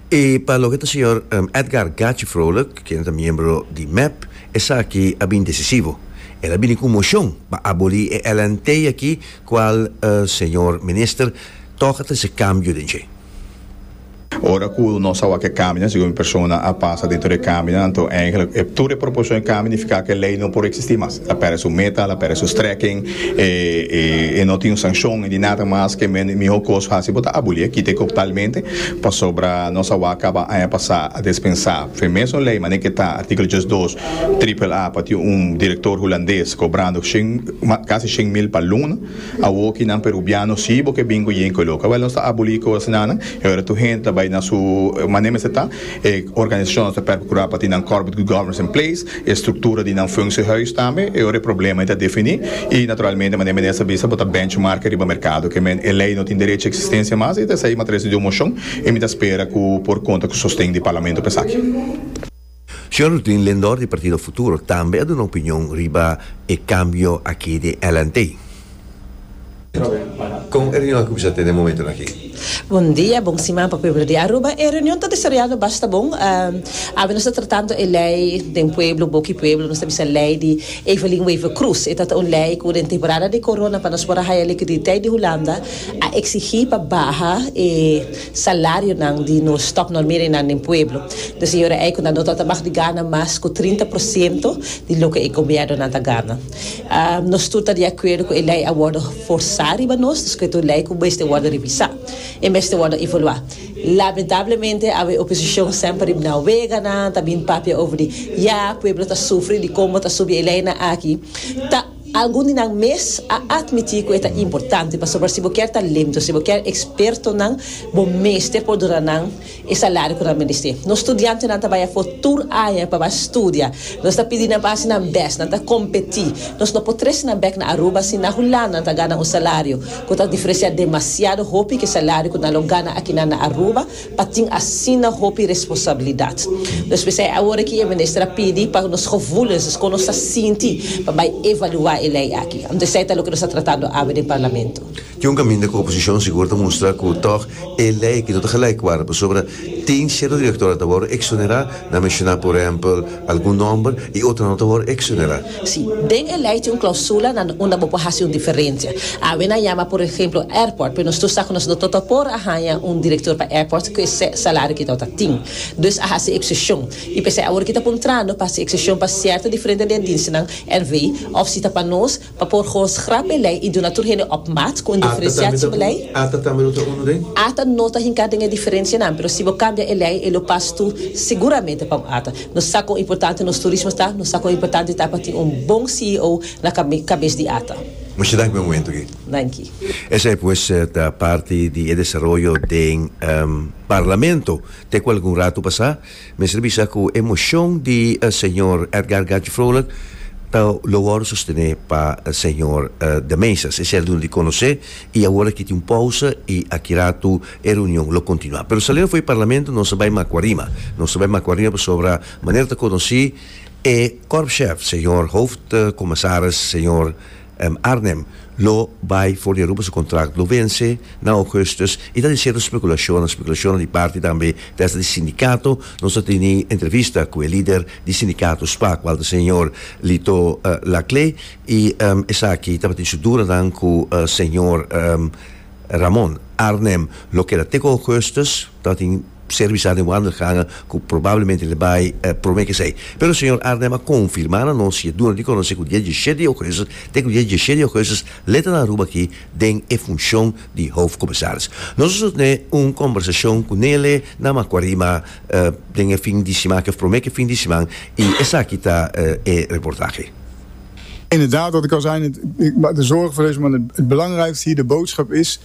E pa loke ta señor Edgar Gachi Vrolijk, quien ta miembro di mep, esaki a bin decisivo. El a bini cu un mocion pa aboli e LNT aki cual señor Minister toca ta hasi cambio den dje. Ora cu nos a wak e cambinan, segun mi persona a pasa dentro di e cambinan, anto eigenlijk e tur e proposicionnan di cambinan nifica cu e ley no por existi mas. a perde su meta al a perde su strekking e e no tin un sankshon e di nada mas ke men e mihó kos hasi bo ta abulí e kita e koptalmente pasobra nos a wak kaba aña pasá a despensá fe mesun lei manera ke ta artíkulo djes dos tripel a pa tin un direktor hulandes kobrando shen kasi shen mil pa luna awoki nan perubiano si bo ke binko yinko lo kaba nos ta abulí kos nannan e ora tur hende ta bai na su manera mester ta. E organisacionnan ta percura pa tin nan corporate good governance in place, e structura di nan funciehuis tambe, e ora e probleman ta defini y naturalmente manera Minister a bisa bo ta benchmark riba mercado que men e ley no tin derecho existencia mas y ta esey matres di un mocion y mi ta spera cu por conta cu sosten di Parlamento pa esaki. Señor Rutin Lindor di Partido Futuro tambe a duna opinion riba e cambio aki di LNT. Kon e reunion a kuminsá te den momentonan aki? Bon dia, bon siman pa pueblo di Aruba. E reunion ta desaroyando basta bon. Awe nos ta tratando e lei den pueblo, boka e pueblo, nos ta bisa lei di Evelyn Wever Croes. E ta ta un lei ku den temporada di corona pa nos por a haya likiditeit di Hulanda a eksigí pa baha e salarionan di nos top normeringnan den pueblo. Des e ora ei ku nan no tabata mag di gana mas ku trinta por siento di loke e gobiernonan ta gana. Um, nos tur ta di akuerdo ku e lei a wòrdu forsá riba nos, dus ku et un lei ku mester wòrdu revisá, e mester wòrdu evaluá. Lamentablemente, awe oposishon semper riba nan weganan ta bin papia over di ya, pueblo ta sufri di kon bo ta subi e leinan aki, ta algun di nan mes a atmití ku e ta importante, pasobra si bo kier talento, si bo kier ekspertonan, bo mester por duna nan. e salario ku nan merese. Nos studiantenan ta bai afó tur aña pa bai studia. Nos ta pidi nan pa hasi nan bèst, nan ta kompetí. Nos no por trese nan bèk na Aruba si na Hulanda nan ta gana un salario ku ta diferensia demasiado hopi ku e salario ku nan lo gana akinan na Aruba pa tin asina hopi responsabilidat. Nos mester e awor aki e minister a pidi pa nos gevoelens, dus kon nos ta sinti, pa bai evaluá e lei aki. Anto esei ta loke nos ta tratando awe den parlamento. Ki un kaminda ku oposishon sigur ta mustra ku tòg e lei aki no ta galaik wòrdu pasobra tin sierto direktornan ta wòrdu eksonerá, nan menshoná por ehèmpel algun nòmber, i otronan no ta wòrdu eksonerá. Sí, den e lei tin un klausula na unda bo por hasi un diferensia. Awe nan yama por ehèmpel airport, pero nos tur sa ku nos no ta ta por a haña un direktor pa airport ku esei salario ki tabata tin. Dus a hasi ekseshon. I p'esei awor ki ta puntrando pa hasi ekseshon pa sierto diferente den dienstenan, NV, òf si ta pa nos, Pa por host grap belei i duna tur hende op maat ku un diferensiatie belei. Ata tambe no ta unu den. Ata no ta hinka den e diferensianan, pero si bo kambia e lei e lo pas tu seguramente pa un ata. Nos sa kon importante nos turismo ta, nos sa kon importante ta pa tin un bon CEO na kabes di ata. Mucha danki pa e momento aki. Danki. Esei pues ta parti di e desaroyo den Parlamento te ku algun ratu pasá. Mester bisa cu e mocion di señor Edgar Gantje Vrolijk ta lo worde sostene pa señor De Meisas. Esey a duna di conoce y awor aki tin un pausa y aki ratu e reunion lo continua. Pero saliendo fo'i Parlamento nos a bay Macuarima. Nos ta bay Macuarima pasobra manera ta conoci e Corpschef, señor Hoofdcommissaris, señor. Arnhem lo bai for di Aruba su kontrakt lo vense na Ougustus i ta di seru spekulashonnan, spekulashonnan di parti tambe desde di sindikato. Nos a teni entrevista ku e lider di sindikato spak kual ta señor Lito Laclé i esaki tabatin su dudanan ku señor Ramon. Arnhem lo keda te ku Ougustus. Ta tin servisnan den Wandergangen cu probablemente lo bay prome kesey. Pero señor Arnhem a confirma na nos y a duna di conoce cu di e diecisiete di augustus te cu di e diecisiete di augustus lo ta na Aruba aki den e funcion di hoofdcommissaris. Nos a sutne un conversacion cu Nele na Macuarima den e fin di siman, of prome fin di siman, y esaki ta e reportahe. Inderdaad, wat ik al zei net, ik maak de zorgen voor deze man, het belangrijkste hier, de boodschap is,